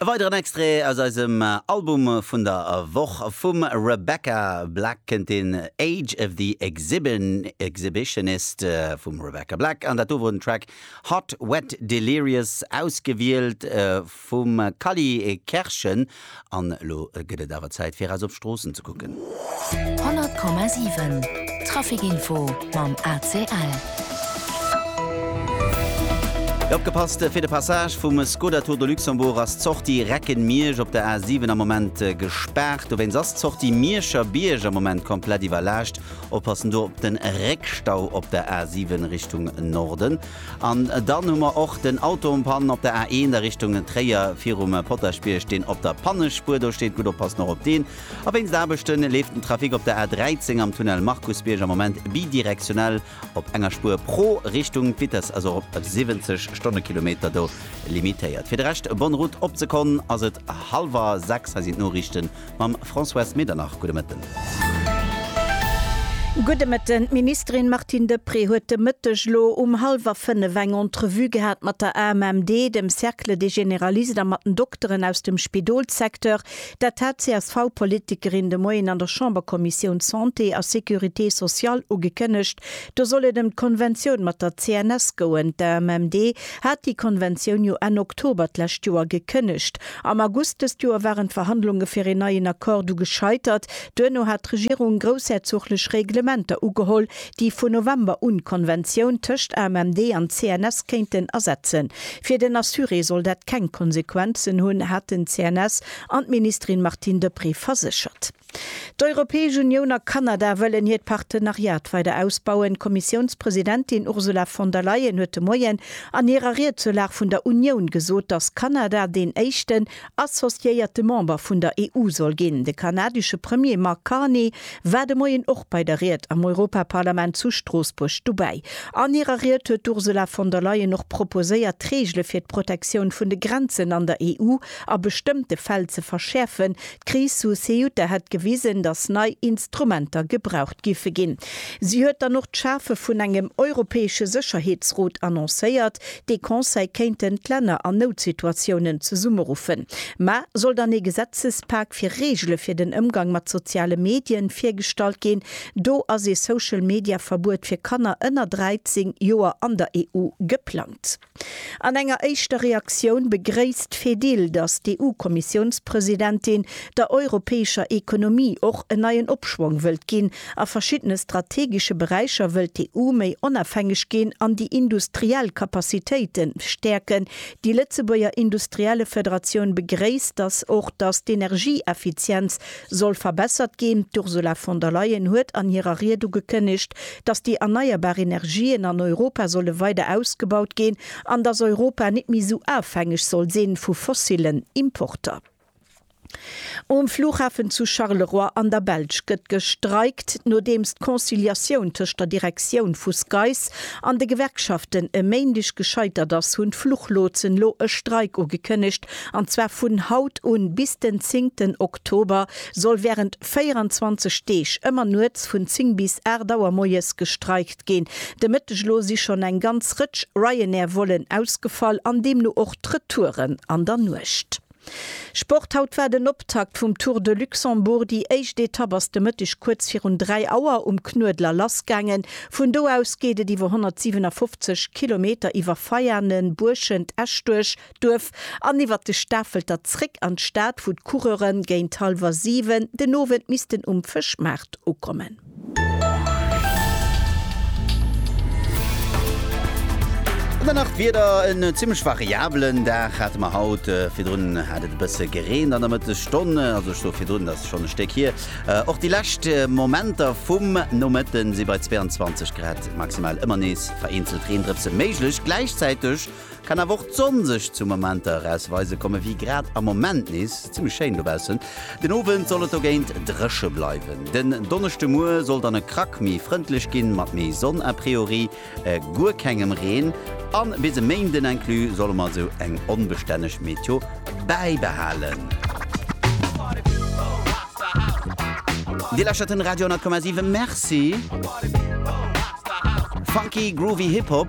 E weideren Extrait aus eisem Album vun der Woch. Vum Rebecca Black kënnt den Age of the Exhibitionist vum Rebecca Black an dat do wor den Track Hot Wet Delirious ausgewielt vum Kali Kerschen. An elo gëtt et awer Zäit fir eis op d'Stroossen ze kucken. 100,7 Trafic Info mam ACL. Opgepasst, Fir de Passage vum Skoda Tour de Luxembourg ass d'Sortie Recken-Miersch op der A7 am Moment gespaart. Dowéinst ass d'Sortie Mierscher Bierg am Moment komplett iwwerlaascht. Oppassen do op de Réckstau op der A7 Richtung Norden. An dann hu mer och den Auto en panne op der A1 a Richtung Tréier virum Potaschbierg, deen op der Pannespuer do steet. Gutt oppassen och op deen. A wéinst Aarbechte leeft den Trafic op der A13 am Tunnel Markusbierg am Moment bidirektionell op enger Spuer pro Richtung. D'Vitesse ass och op 70 Stonnekilometer do limitéiert. Fir de Rescht, bonne route. Op d'Sekonn ass et hallwer 6. Hei sinn d'Noriichten Mam Françoise Medernach, gudde Mëtten. Gudde Mëtten. D'Ministerin Martine Deprez huet de Mëtteg elo um hallwer fënnef eng Entrevue gehat mat der AMMD, dem Cercle des Généralistes a mat den Dokteren aus dem Spidolssecteur. Dat hat d'CSV-Politikerin de Moien an der Chamberkommissioun Santé a Sécurité sociale ugekënnegt. Do soll et ëm d'Konventioun mat der CNS goen. D'AMMD hat déi Konventioun jo Enn Oktober d'lescht Joer gekënnegt. Am August dëst Joer waren d'Verhandlunge fir een neien Accord du gescheitert. Duerno hat d'Regierung groussherzoglech Reglementer ugeholl, déi vun November un d'Konventioun tëscht AMMD an CNS kéinten ersetzen. Fir den Assuré soll dat keng Konsequenzen hunn, haten d'CNS an d'Ministerin Martine Deprez verséchert. D'Europäesch Unioun a Kanada wëllen hiert Partenariat weider ausbauen. D'Kommissiounspresidentin Ursula von der Leyen huet de Moien an hirer Ried zur Lag vun der Unioun gesot, datt Kanada deen éischten associéierte Member vun der EU soll ginn. De kanadesche Premier Mark Carney war de Moien och bei der Ried am Europaparlament zu Stroossbuerg dobäi. An hirer Ried huet d'Ursula von der Leyen och proposéiert, d'Reegele fir d'Protektioun vun de Grenzen an der EU a bestëmmte Fäll ze verschäerfen, D'Kris zu Ceuta hätt gewisen, datt nei Instrumenter gebraucht giffe ginn. Si huet dann och d'Schafe vun engem europäesche Sécherheetsrot annoncéiert, dee Conseil kéinten d'Länner an Noutsituatiounen zesummeruffen. Ma soll dann ee Gesetzespak fir Reegele fir den Ëmgang mat soziale Medien virgestallt ginn? Do ass ee Social-Media-Verbuet fir Kanner ënner 13 Joer an der EU geplangt. An enger éischter Reaktioun begréisst d'Fedil, datt d'EU-Kommissiounspresidentin der europäescher Ekonomie och en neien Opschwong wëllt ginn. A verschiddene strategesche Beräicher wëllt d'EU méi onafhängeg ginn an déi industriell Capacitéite stäerken. Déi Lëtzebuerger Industriellefederatioun begréisst datt och datt d'Energieeffizienz soll verbessert ginn. D'Ursula von der Leyen huet an hirer Ried ugekënnegt, datt déi erneierbar Energien an Europa solle weider ausgebaut ginn an datt Europa net méi esou ofhängeg soll sinn vu fossillen Importer. Um Flughafen zu Charleroi an der Belsch gëtt gestreikt, nodeems d'Conciliatioun tëscht der Direktioun vu SKAIS an de Gewerkschaften e Méindeg gescheitert ass, hunn d'Fluchlotsen elo e Streik ugekënnegt, An zwar vun haut un bis den zéngten Oktober soll wärend 24 Deeg ëmmer nuets vun 10 bis 8 Auer moies gestreikt ginn. De Mëtteg elo si schonn eng ganz Rëtsch Ryanair-Vollen ausgefall an deemno och d'Retouren an der Nuecht. Sport, Haut war den Optakt vum Tour de Luxembourg. Déi éischt Etapp ass de Mëtteg kuerz virun 3 Auer um Knuedler lassgaangen. Vun do aus geet et iwwer 157 Kilometer iwwer Veianen, Buerschent, Esch duerch. Duerf an iwwert de Stafelter zréck an d'Stad, wou d'Coureure géint hallwer 7 den Owend missten um Fëschmaart ukommen. An dann nach d'Wieder, en zimmlech variabelen Dag hate mer haut. Virdrun hat et e bësse gereent an der Mëttesstonn, also ech soe virdrun, dat ass schonn e Stéck hier. Och déi lescht Momenter vum Nomëtten si bei 22 Grad maximal ëmmer nees vereenzelt Reendrëpse méiglech. Gläichzäiteg Kann awer och d'Sonn sech zu Momenter erausweise komme wéi grad am Moment nees zimmlech schéin dobaussen. Den Owend soll et dogéint dréche bleiwen. Den Donneschdemuer soll dann e Krack méi frëndlech ginn, mat méi Sonn a priori guer kengem Reen. A bis e Méinden inclus solle mer esou eng onbestänneg Meteo bäibehalen. Dir lauschtert den Radio 10,7. Merci! Funky, groovy Hip-Hop.